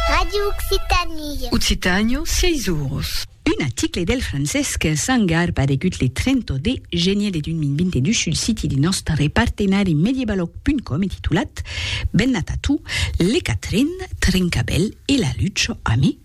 Radio Occitanie. Occitànio, sièis oros. Un aticle del Francesc Sangar paregut le 30 de genier de 2022 sul siti de nòstre partenari Mediebalog.com e titulat Bennat a tu, le Catrin, Trincabèl e la Lucho, ami?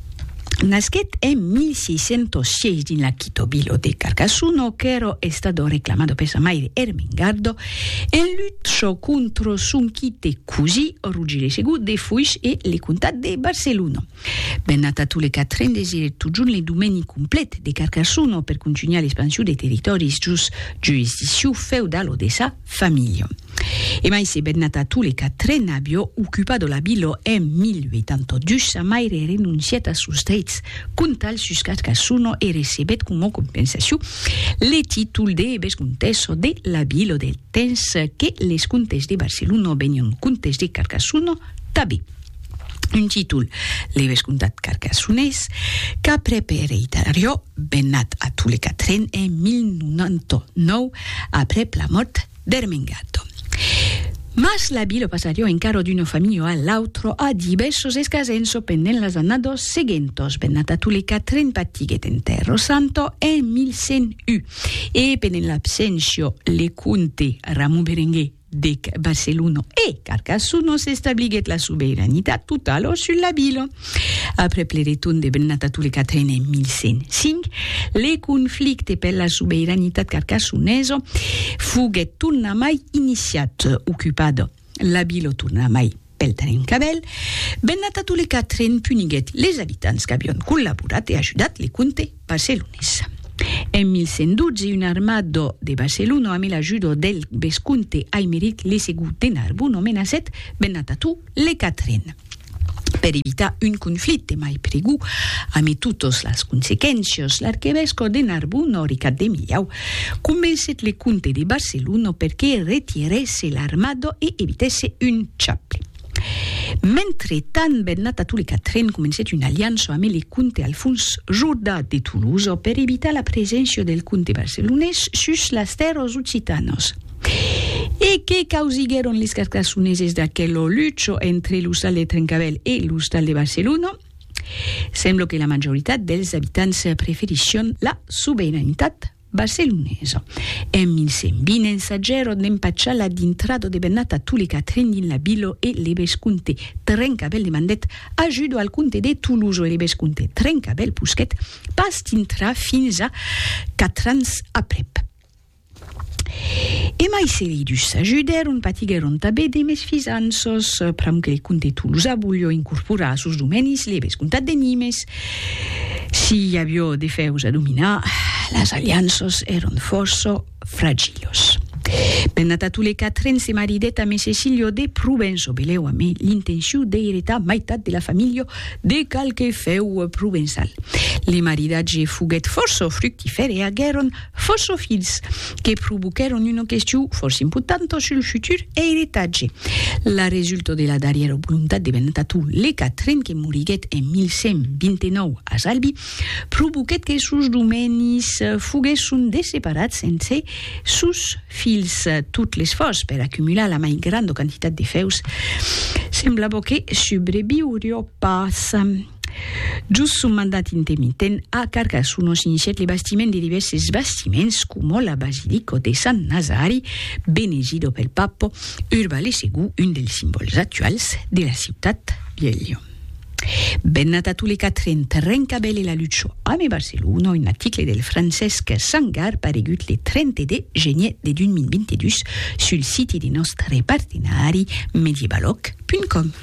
Nasquèt en 1606 dins la Quito Bilo de Carcasuno, qu'èra estado reclamado per sa maire Ermengardo, en lucha contra son quite cosí Rogere Segú de Foix e le comtat de Barcelona. Bernat Atule Catrin desirèt totjorn le domèni complet de Carcasuno per contunhar l'expansion de territòris jos jurisdiccion feudala de sa familha. E mai se bèt nata tole qu'a tre n'abio ocupat la vila en 1082, sa maire renoncièt a sos dreits contal sus Carcassona e recebèt coma compensacion le títol de vescontessa de la vila del temps que les comtes de Barcelona venián comtes de Carcassona tanben. Un títol, le vescomtat carcassonés, qu'après per eritarior Bennat a Tule Catrin en 1099 aprèp la mòrt d'Ermengardo. Mas la vila passarió encara d'una familha a l'autra a divèrsos escasenço pendent las annados seguentos. Bennat a Tule Catrin patiguèt en Terro Santo en 1101 e pendent l'abséncia le comte Ramon Berenguer, dec Barcelona e Carcassona s'establiguèt la sobeiranitat totala sus la vila. Aprèp le retorn de Bernat a Toulecatren en 1105, le conflicte per la sobeiranitat carcassonesa foguèt tornamai iniciat, ocupada la vila tornamai Pel darren cabèl, Bennata Tulecatrén puniguèt les abitants qu'avion collaborat e ajudat le comte barcelonés. En 1112, un armado de Barcelona, amé l'ajudo del vescomte Aimeric le Segur de Narbona, menaçèt Bennata Tu le Catrén. Per evitar un conflicte mai pregur, amé totas las consequéncias, l'arquevescò de Narbona, Ricard de Millau, Convencet le comte de Barcelono per que retirèsse l'armada e evitèsse un chapli. Mentretant, Bernat Atau le Quatrèn comencèt una aliança ame le comte Alfons Jordà de Tolosa per evitar la preséncia del comte barcelonés sus las tèrras occitanas. E que causiguèron les Carcassoneses d'aquela lucha entre l'ostal de Trencavèl e l'ostal de Barcelona? Sembla que la majoritat dels abitants preferisson la sobeiranetat barcelonesa. En 1120 ensagèron d'empachar la dintrada de Bernat a Tule Catrin dins la vila e Lebescomte Trencabèl demandèt ajuda al comte de Tolosa e Lebescomte Trencabèl posquèt pas dintrar fins a quatre ans aprèp. E mai se li dus s'ajudèron, patiguèron tanben de mesfizanças, pr'amor que li conte Tolosa volhó incorporar sos domenis libres comtat de Nimes. Si i avió de fèus a dominar, las alianças èron fòrça fragilos. Bernat a Tolé Catrin se maridèt amé Cecilio de Provença, belèu amé l'intencion d'eiretar maitat de la familha de qualque fèu provençal. Le maridatge foguèt fòrça fructifèr e aguèron Fòrça fils que provoquèron una question fòrça importanta sul futur eiritatge. La resulta de la darrièra volontat de Bernat Ató le Quatren, que moriguèt en 1129 a Zalbi, provoquèt que sos domènis foguèsson desseparats entre sos fils. Tot l'esfòrç per acumular la mai granda quantitat de fèus semblava que subreviuriá pas. Jos son mandat intemitent, a Carcassonne s'inicièt le bastiment de divèrses bastiments coma la basilico de Sant Nazari, benegido pel Papo Urba le Segú, un dels simbòls actuals de la ciutat de Lion. Bennat a Tule Catrin, Trencabèl e la Lucho ame Barcelona, un article del Francesc Sangar paregut le 30 de genier de 2022 sul siti de nòstre partenari mediebaloc.com.